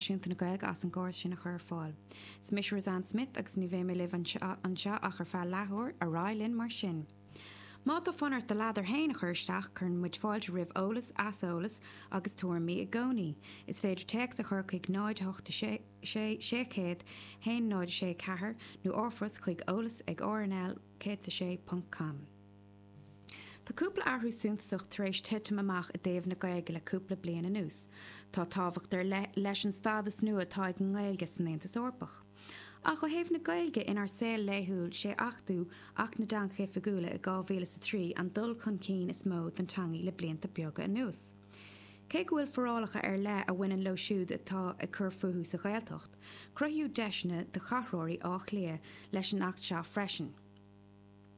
Náisiúnta na Gaillimhe as an gcóras sin a chur ar fáil. Is mise Roseanne Smith agus ní bheidh mé libh anseo ach ar feadh leathuair, ar aghaidh linn mar sin. Má tá fonn ort do ladar féin a chur isteach, cuireann muid fáilte roimh eolas, aiseolas agus tuairimí i gcónaí. Is féidir téacs a chur chuig 0, 8, 6, 600, 1, 0, 6, 4 nó r-phost chuig eolas ag rnl106.com. Tá cúpla athrú suntasach tar éis titim amach i dtaobh na Gaeilge le cúpla bliain anuas. Tá tábhacht ar leith leis an stádas nua atá ag an nGaeilge san Aontas Eorpach. Ach ó thaobh na Gaeilge inár saol laethúil is é achtú Acht na dTeangacha Oifigiúla i 2003 an dul chun cinn is mó don teanga le blianta beaga anuas. Cé go bhfuil forálacha ar leith a bhaineann leo siúd atá ag cur fúthu sa Ghaeltacht, cruthaíodh deiseanna do chathróirí Átha Cliath leis an Acht seo freisin.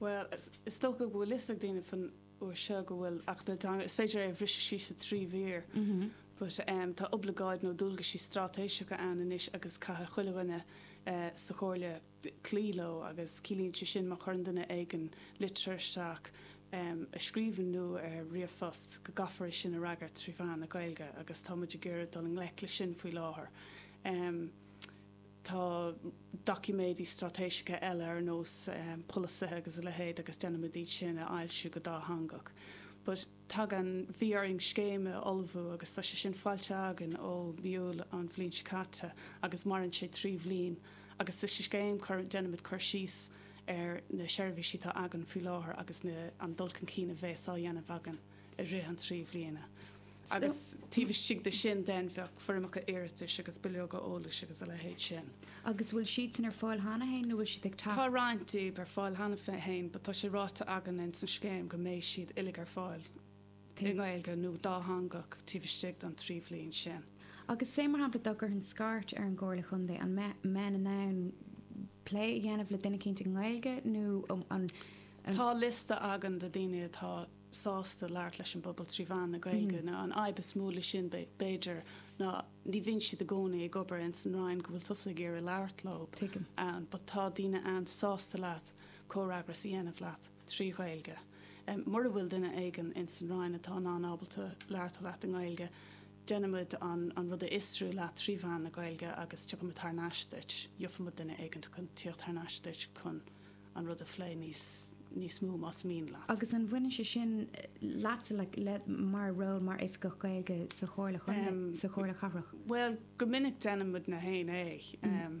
Bhuel, is dócha go bhfuil fhios ag daoine faoin uair seo go bhfuil Acht na dTeanga, is féidir é a bhriseadh síos i dtrí mhír, but tá oibleagáid nó dualgaisí straitéiseacha ann anois agus caithfidh chuile dhuine sa Chomhairle cloí leo agus ciallaíonn sé sin má chuireann duine éigin litir isteach i scríbhinn nó ar ríomhphost go gcaithfear é sin a fhreagairt trí mheán na Gaeilge agus tá muid ag iarraidh dul i ngleic leis sin faoi láthair. Tá doiciméidí straitéiseacha eile ar nós polasaithe agus a leithéid agus déanaimid iad sin a fhoilsiú go dátheangach. But tagann, bhí orainn scéim a ullmhú agus tá sé sin foilsithe againn ó mhí Iúil an bhliain seo caite agus maireann sé trí bhliain agus sa scéim cuireann, déanaimid cur síos ar na seirbhísí atá againn faoi láthair agus na, an dul chun cinn a bhéas á dhéanamh againn. i rith an trí bhliana agus taobh istigh de sin déanamh foirmeacha iarratais agus bileoga eolais agus a leithéid sin. Agus bhfuil siad sin ar fáil cheana féin nó bhfuil siad ag teacht? Tá roinnt díob ar fáil cheana féin, but tá sé ráite againn in san scéim go mbeidh siad uilig ar fáil i nGaeilge nó dátheangach taobh istigh don trí bhliain sin. Agus sé mar shampla dá gcuirfinn scairt ar an gComhairle Chontae an mbeinn in ann plé a dhéanamh le duine éicint i nGaeilge nó an Tá liosta againn de daoine atá sásta labhairt leis an bpobal trí mheán na Gaeilge now an fhadhb is mó le sin b'fhéidir ná ní bhíonn siad i gcónaí ag obair ins an Roinn go bhfuil tusa ag iarraidh labhairt leo ann, but tá daoine ann sásta leat comhfhreagras a dhéanamh leat trí Ghaeilge. Mura bhfuil duine éigin ins an Roinn atá in ann ábalta labhairt leat i nGaeilge, déanfaimid an rud a aistriú leat trí mheán na Gaeilge agus tiocfaimid thar n-ais duit, gheofaimid duine éigin chun tíocht thar n-ais duit chun an rud a phlé níos mó más mian leat. Agus an bhaineann sé sin leatsa le do ról mar Oifigeach Gaeilge sa Chomhairle Chontae, sa Chomhairle Chathrach? Bhuel, go minic déanann muid féin é.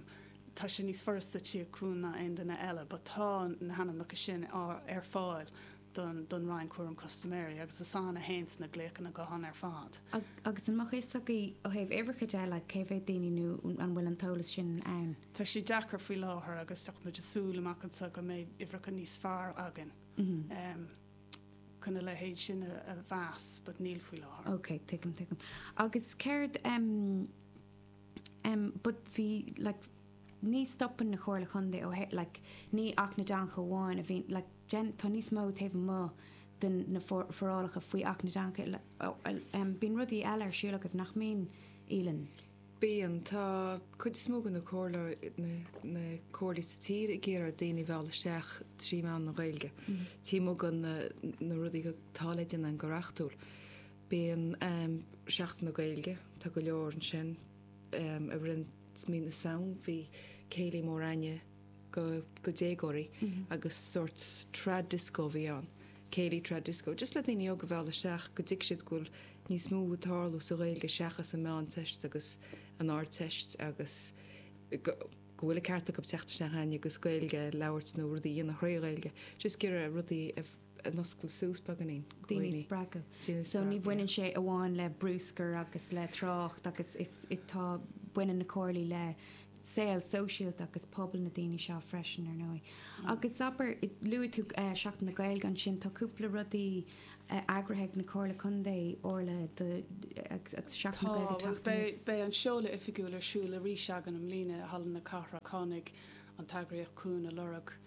Tá sé níos furasta teacht chugainn ná aon duine eile but tá na hainmneacha sin ar fáil don don Roinn Cúram Custaiméirí agus is ann a théann na glaochanna gutháin ar fad. Agus an mbeadh fhios agaibh ó thaobh uimhreacha de like cé mhéad daoine nó an bhfuil an t-eolas sin ann? Tá sé deacair faoi láthair agus bheadh muid ag súil amach anseo go mbeidh uimhreacha níos fearr againn chun a leithéid sin a mheas, but níl faoi láthair. Ok, tuigim, tuigim. Agus céard, but bhí, like, ní stopann na Comhairle Contae ó, like, ní Acht na dTeangacha amháin a bhíonn, like, tá níos mó taobh amuigh de na forálacha faoi Acht na dTeangacha, bíonn rudaí eile ar siúl agaibh nach mbíonn, Aoileann? Bíonn. Tá cuid is mó de na comhairleoirí, na comhairlí sa tír ag iarraidh daoine a mhealladh isteach trí mheán na Gaeilge. Taobh amuigh de na rudaí atá le déanamh go reachtúil. Bíonn um, Seachtain na Gaeilge, tá go leor ansin um, a rinn Mí na Samhna, bhí céilí mór againne, do dhéagóirí agus sórt trad disco a bhí ann, céilí trad disco, just le daoine óga a mhealladh isteach go dtuigeann siad go bhfuil níos mó ag tarlú sa Ghaeilge seachas an Mheánteist agus an Ardteist agus go bhfuil an ceart acu teacht isteach chugainn agus Gaeilge a labhairt nó rudaí a dhéanamh thrí Ghaeilge, just ag iarraidh rudaí a mhúscailt suas beagáinín. Daoine a spreagadh. Daoine a spreagadh. So ní bhaineann sé amháin le brúscar agus le trácht agus is tá baineann na comhairlí le saol sóisialta agus pobail na daoine seo freisin ar ndóigh. Agus abair, luaigh tú Seachtain na Gaeilge ansin, tá cúpla rudaí eagraithe ag na Comhairle Contae, Orla, agus Seachtain na Gaeilge ag teacht aníos. Tá, beidh an seoladh oifigiúil ar siúl arís againn i mbliana i Halla na Cathrach. Tháinig an t-eagraíocht chugainn ag lorg.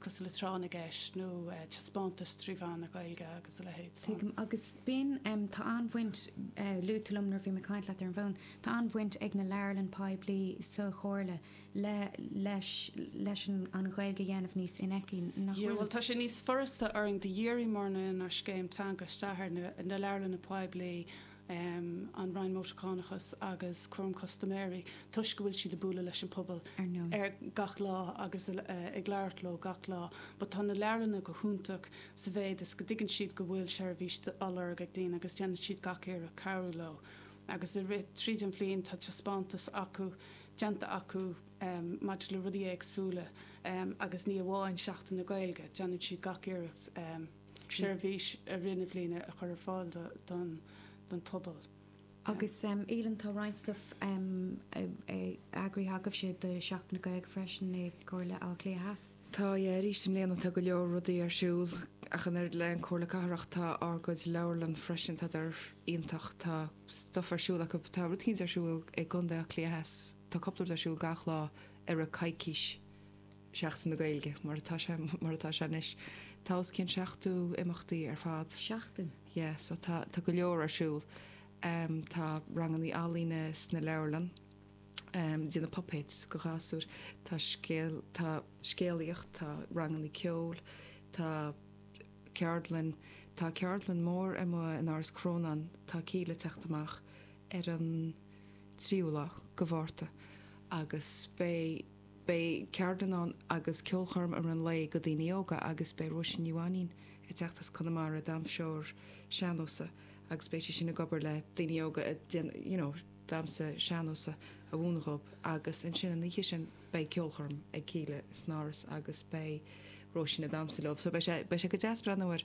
cosúil le tráth na gceist nó taispeántais trí mheán na Gaeilge agus a leithéid. Tuigim, agus b'in, tá an-bhaint, luaigh tú liom nuair a bhí mé ag caint leat ar an bhfón, tá an-bhaint ag na leabharlann poiblí sa Chomhairle leis an Ghaeilge a dhéanamh níos infheicthe, nach bhfuil? Bhuel, tá sé níos furasta orainn dáiríre mar díríonn ár scéim teanga isteach ar na leabharlanna poiblí um an Roinn Mótarchánach agus Cúram Custaiméirí toisc go bhfuil siad ag bualadh leis an bpobal, ar ndóigh. gach lá agus ag labhairt leo gach lá but tá na leabharlanna go hiontach sa mhéad is go dtuigeann siad go bhfuil seirbhís á lorg ag daoine agus déanann siad gach iarracht cabhrú leo agus i rith, tríd an bhliain tá taispeántas acu, déanta acu um maidir le rudaí éagsúla um agus ní amháin Seachtain na Gaeilge, déanann siad gach iarracht um. seirbhís ar an mbliain a chur ar fáil don phobal. Agus a Uilliam, tá roinnt stuif eagraithe agaibhse do Sheachtain na Gaeilge freisin i gComhairle Átha Cliath Theas. Tá, eh arís i mbliana tá go leor rudaí ar siúl ach an oiread leis an gComhairle Cathrach tá ár gcuid leabharlann freisin tá siad iontach tá stuif ar siúl acu tá rud éicint ar siúl i gContae Átha Cliath Theas tá cupla rud ar siúl gach lá ar feadh coicís Sheachtain na Gaeilge, mar atá sé, mar atá sé anois, tá os cionn 70 imeachtaí ar fad. Seachtain? Yeah, so tá, tá go leor ar siúl. Um, tá rangannaí ealaíne sna leabharlann, um, déanamh puppets do ghasúir, tá scéal, tá scéalaíocht, tá rangannaí ceoil, tá ceardlann, tá ceardlann mór amuigh in Áras Crónáin, tá Kíla ag teacht amach ar an tríú lá de Mhárta agus beidh, Beidh ceardlann agus ceolchoirm i rith an lae do dhaoine óga agus beidh Róisín Ní Mhainín ag teacht as Conamara, damhsóir sean-nósa agus beidh sí sin ag obair le daoine óga ag déanamh you know damhsa sean-nósa a mhúineadh dhóibh agus ansin an oíche sin beidh ceolchoirm ag Kíla san Áras agus beidh Róisín ag damhsa leob so beidh sé beidh sé go deas breathnú ar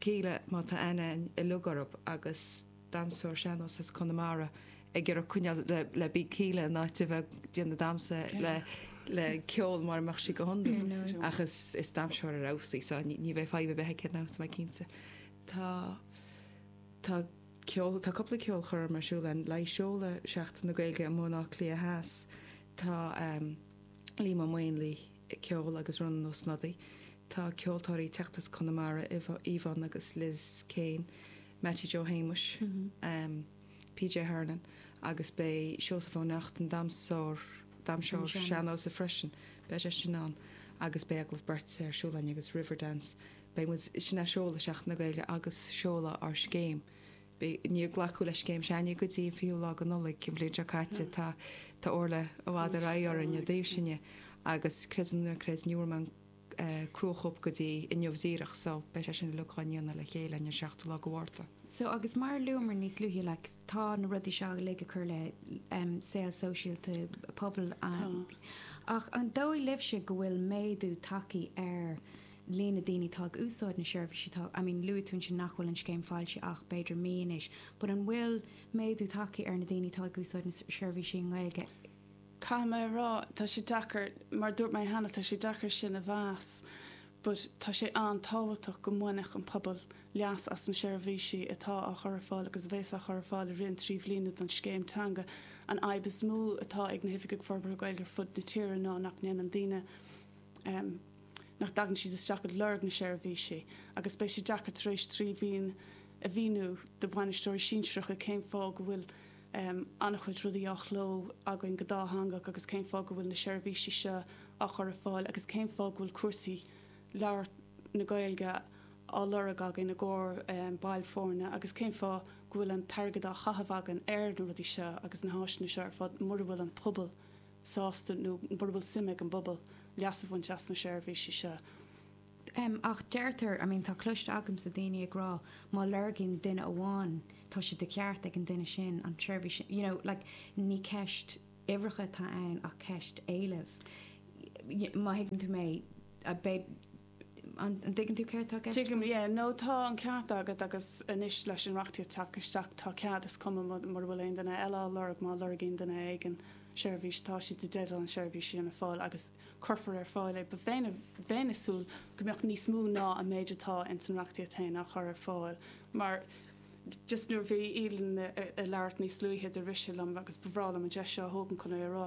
Kíla má tá aithne uilig orthub agus damhsóir sean-nós as Conamara ag iarraidh coinneáil le beat Kíla in áit a bheith ag déanamh damhsa le ceol mar a bheadh sí go hiondúil ach is damhsóir ar fheabhas í so ní bheidh fadhb ar bith aici ná tá mé cinnte. Tá tá ceol tá cúpla ceolchoirm ar siúl ann le seoladh Seachtain na Gaeilge i mBaile Átha Cliath Theas tá Liam Ó Maonlaí ag ceol agus Rónán Ó Snodaigh. Tá ceoltóirí ag teacht as Conamara, Yvonne agus Liz Kane, Mattie Joe Shéamuis, PJ Hernon agus beidh Seosamh Ó Neachtain, damhsóir sean-nósa freisin, beidh sé sin ann agus beidh Agallamh Beirte ar siúl ann agus Riverdance. Beidh muid, sin ag seoladh Sheachtain na Gaeilge agus ag seoladh ár scéim Níor glacadh leis an scéim seo againne go dtí an 20ú lá de Nollaig an bhliain seo caite. Tá Orla i bhfad ar aghaidh orainn i dtaobh sin dhe agus creid é nó ná creid ní bhfuair muid an chruachóip go dtí inniu díreach so beidh sé sin uilig dhá ndéanamh le chéile an 7ú lá de Mhárta. So agus mar a luamar níos luaithe like tá na rudaí seo uilig ag cur le em saol sóisialta pobal ach an dóigh libhse go bhfuil méadú tagthaí ar líon na daoine atá ag úsáid na seirbhísí atá, I mean luaigh tú ansin nach bhfuil an scéim foilsithe ach b'fhéidir mí anois, but an bhfuil méadú tagthaí ar na daoine atá ag úsáid na seirbhísí i nGaeilge? Caithfidh mé a rá, tá sé deacair, mar a dúirt mé cheana, tá sé deacair sin a mheas but tá sé an-tábhachtach go mbainfeadh an pobal leas as na seirbhísí atá á chur ar fáil agus a bheas á chur ar fáil i rith an trí bhliana den scéim teanga. An fhadhb is mó atá ag na hOifigigh Forbartha Gaeilge ar fud na tíre ná nach ndéanann daoine nach dtagann siad isteach ag lorg na seirbhísí agus beidh sé deacair tar éis trí bhliain a mhíniú do bhainisteoirí sinsearacha cén fáth go bhfuil an-chuid rudaí á chló againn go dátheangach agus cén fáth go bhfuil na seirbhísí seo á chur ar fáil agus cén fáth go bhfuil cúrsaí labhairt na Gaeilge á lorg againn i gcomhair baill foirne agus cén fáth go bhfuil an t-airgead á chaitheamh againn ar na rudaí seo agus na háiseanna seo ar fad mura bhfuil an pobal sásta nó mura bhfuil suim ag an bpobal leas a bhaint as na seirbhísí seo. Ach deirtear, I mean tá cloiste agamsa daoine ag rá má lorgann duine amháin tá sé de cheart ag an duine sin an tseirbhís sin, you know, like ní ceist uimhreacha atá ann ach ceist éilimh, má thuigeann tú mé. An dtuigeann tú céard atá i gceist agam? Tuigim, yeah. No, tá an ceart agat agus anois leis an reachtaíocht ag teacht isteach tá cead, is cuma mura bhfuil aon duine eile á lorg, má lorgaíonn duine éigin seirbhís tá siad i dteideal an seirbhís sin a fháil agus cuirfear ar fáil é. But bheinn, bheinn ag súil go mbeadh níos mó ná an méid atá ins an reachtaíocht féin á chur ar fáil mar just nuair a bhí Aoileann ag labhairt níos luaithe do rith sé liom agus ba bhreá liom an deis seo a thógaint chun é a rá.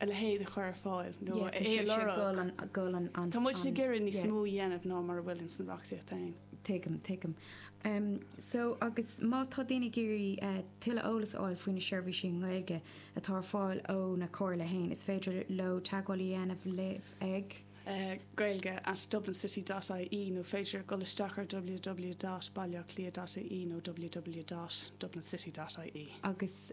a leithéid a chur ar fáil nó a lorg. Tá muid ag iarraidh níos mó a dhéanamh ná mar a bhfuil ins an reachtaíocht féin. Tuigim, tuigim. So agus má tá daoine ag iarraidh tuilleadh eolas a fháil faoi na seirbhísí i nGaeilge atá ar fáil ó na comhairlí féin, is féidir leo teagmháil a dhéanamh libh ag? Gaeilge at dublincity dot ie nó is féidir dul isteach ar ww dot baileacliath dot ie nó ww dot dublincity dot ie. Agus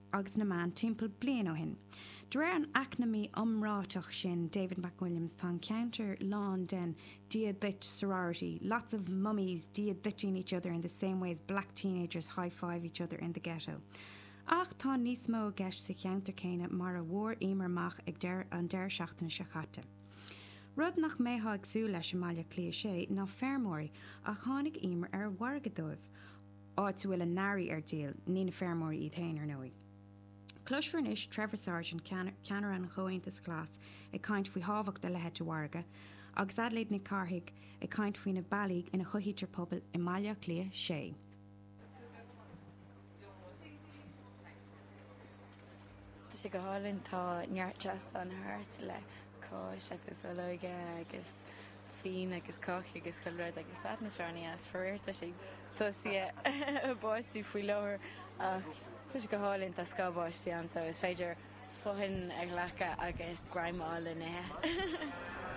agus na meán timpeall bliain ó shin. De réir an eacnamaí iomráiteach sin David McWilliams tá an ceantar lán den Dia Duit sorority, lots of mummies dia duiting each other in the same way as black teenagers high-five each other in the ghetto. Ach tá níos mó i gceist sa cheantar céanna mar a bhfuair Emer amach ag an deireadh seachtaine seo caite. Rud nach mbeifeá ag súil leis i mBaile Cliath 6 ná feirmeoirí, ach tháinig Emer ar mhargadh dóibh. áit a bhfuil a n-earraí ar díol, ní na feirmeoirí iad féin, ar ndóigh. Cloisfear anois Trevor Sargent, ceannaire an Chomhaontais Ghlais, ag caint faoi thábhacht a leithéid de mhargadh, agus Adelaide Nic Cárthaigh ag caint faoi na bealaí ina chothaítear pobail i mBaile Átha Cliath 6. Tá sé go hálainn, tá neart seastán thart le cáis agus olóige agus fíon agus cácaí agus chuile rud agus stad na sránaí as faraor tá sé tosaithe báistí faoi láthair ach tá sé go hálainn, tá scáth báistí ann so is féidir fothain a ghlacadh agus greim a fháil le n-ithe.